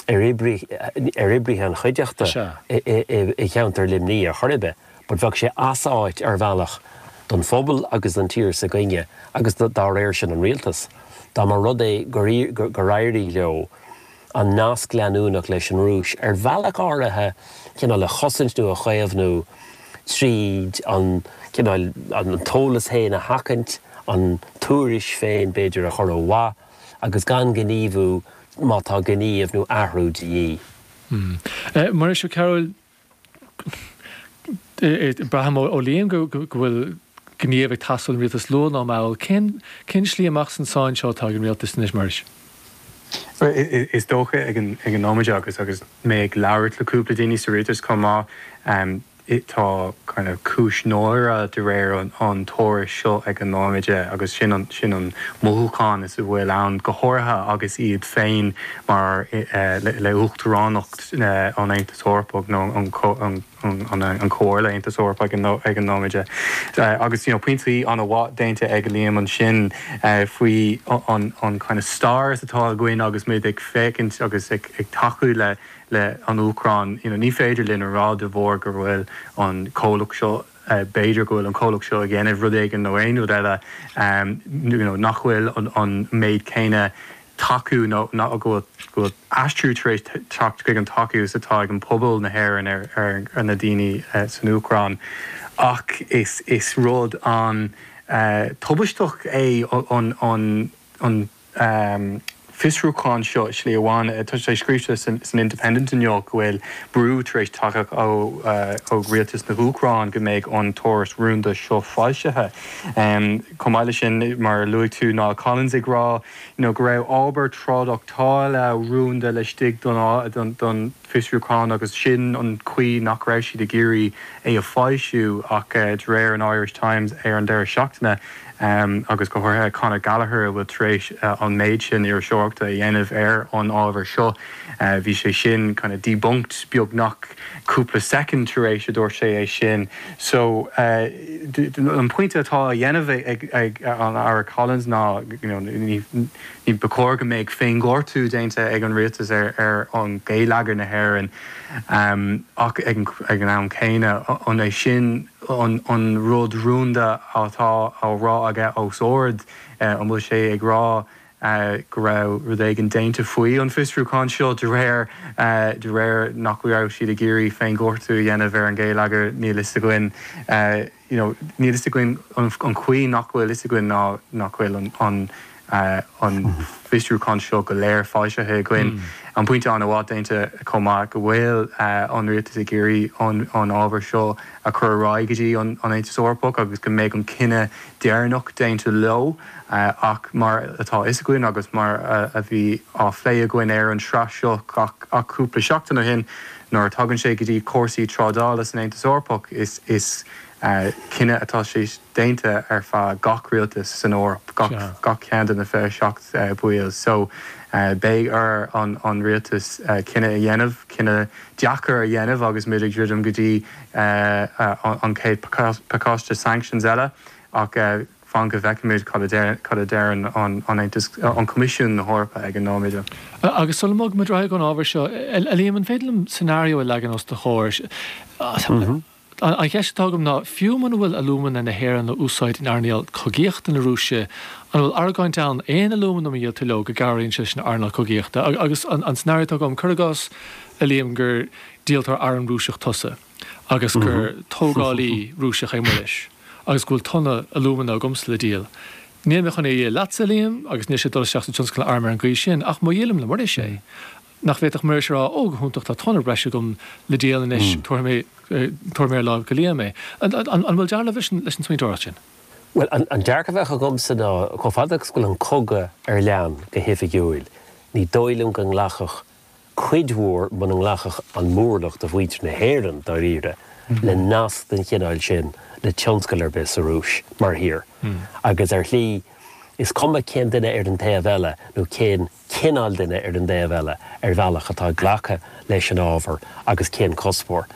ar oibrithe an chuideachta i gceantar Luimnigh ar chor ar bith, but bheadh sé áisiúil ar bhealach don phobal agus don tír s'againne agus dá réir sin an Rialtas, dá mba rud é gur éirigh leo an nasc leanúnach leis an Rúis ar bhealach áirithe cineál a chosaint nó a chaomhnú tríd an cineál, an t-eolas seo a sheachaint, an tuairisc féin b'fhéidir a chur ó mhaith. agus gan gníomhú má tá gníomh nó athrú de dhíth. Hm. Muiris Ó Cearbhaill, braithim ó Liam go bhfuil gníomh ag teastáil ón rialtas luath ná mall. Cén slí amach as an sáinn seo atá ag an rialtas anois, Muiris? Is dócha ag an nóiméide agus mé ag labhairt le cúpla daoine sa rialtas chomh maith, tá kind of ciúnas mór de réir an taraif seo ag an nóiméide agus sin an, sin an mothúchán is a bhfuil ann, go háirithe agus iad féin mar eh le Uachtaránacht eh an Aontais Eorpaigh nó an co, an, an, an Comhairle Aontais Eorpaigh ag an, ag an nóiméide eh agus you know pointí ana-mhaith déanta ag Liam ansin eh faoi an, an kind of stair is atá againn agus muid ag féachaint agus ag, ag tacú le le an Úcráin. You know, ní féidir linn a rá de bharr go bhfuil an comhlacht seo, b'fhéidir go bhfuil an comhlacht seo ag déanamh rud éigin nó aon rud eile, you know, nach bhfuil an méid céanna tacú nó go bhfuil aistriú tar éis teacht chuig an tacú is atá ag an bpobal na hÉireann ar na daoine san Úcráin ach is rud an-tubaisteach é an fiosrúchán seo i slí amháin. Tá sé scríte san Independent inniu go bhfuil brú tar éis teacht ó rialtas na hÚcráin go mbeidh an tuairisc rúnda seo foilsithe. Chomh maith leis sin, mar a luaigh tú, Niall Collins ag rá go raibh ábhar trádáctála rúnda laistigh den fiosrúchán agus sin an chaoi nach raibh siad ag iarraidh é a foilsiú ach de réir an Irish Times ar an deireadh seachtaine agus go háirithe Conor Gallagher atá tar éis an méid sin iriseoireachta a dhéanamh ar an ábhar seo bhí sé sin kind of debunked beagnach cúpla soicind tar éis a dúirt sé é sin so an pointe atá á dhéanamh ag an Aire Collins ná you know ní Ní ba chóir go mbeadh féinghortú déanta ag an rialtas ar an ngeilleagar na hÉireann ach ag an am céanna, an é sin an rud rúnda atá á rá aige os ard? An bhfuil sé ag rá go raibh rud éigin déanta faoi an bhfiosrúchán seo de réir nach raibh siad ag iarraidh féinghortú a dhéanamh ar an ghéilleagar? Níl fhios againn. you know níl 'fhios againn an chaoi nach bhfuil 'fhios againn ná nach bhfuil an fiosrúchán seo go léir foilsithe againn. An pointe an-mhaith déanta chomh maith go bhfuil an rialtas ag iarraidh an ábhar seo a chur ar aghaidh go dtí an Aontas Eorpach agus go mbeidh an cinneadh deireanach déanta leo ach mar atá 'fhios againn agus mar a bhí á phlé againn ar an tsraith seo ach cúpla seachtain ó shin Nuair a thagann sé go dtí cúrsaí trádála san Aontas Eorpach is cinneadh atá sé déanta ar feadh gach rialtas san Eoraip, gach ceann de na 27 baill so beidh ar an rialtas cinneadh a dhéanamh, cinneadh deacair a dhéanamh agus muid ag druidim go dtí an chéad pacáiste sanctions eile ach, Fan go bhfeicfimid cad a deireann an tAontas an Coimisiún na hEorpa ag an nóiméad. Agus sula mbogfaidh muid ar aghaidh ón ábhar seo, a Liam, an féidir liom scenario a leagan os do chomhair? An cheist atá agam ná, fiú muna bhfuil alúmana na hÉireann á úsáid in earnáil cogaíochta na Rúise, an bhfuil argóint ann, aon alúmanam a ndíolann tú leo, go gcabhraíonn sé leis an earnáil cogaíochta? Agus an scenario atá agam, cur i gcás, a Liam, gur díoltóir arm Rúiseach tusa. agus gur tógálaí Rúiseach é Muiris agus go bhfuil tonna alúmana agamsa le díol. Níl mé chun é a dhíol leatsa, a Liam, agus níl sé ag dul isteach sa tionscal arm ar an gcaoi sin, ach má dhíolaim le Muiris é, nach bhféadfadh Muiris a rá, 'Ó, go hiontach, tá tonna breise agam le díol anois, tabharfaidh mé ar láimh go Liam é. An bhfuil dealramh leis an smaointeoireacht sin? Bhuel, an dearcadh a bheadh agamsa ná, chomh fada agus go bhfuil an cogadh ar lean go hoifigiúil, ní dóigh liom go nglacfadh cuid mhór muna nglacfadh an mórlach de mhuintir na hÉireann, dáiríre, le nasc den chineál sin le tionscal ar bith sa Rúis, mar thír. Agus ar shlí, is cuma cén duine ar an taobh eile, nó cén cineál duine ar an dtaobh eile, ar bhealach, atá ag glacadh leis an ábhar agus cén cuspóir,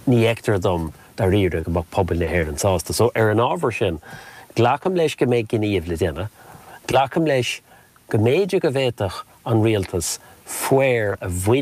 ní fheictear dom, dáiríre, go mbeadh pobail na hÉireann sásta. So, ar an ábhar sin, glacaim leis go mbeidh gníomh le déanamh, glacaim leis, go mb'fhéidir go bhféadfadh an rialtas fáth a bhaint.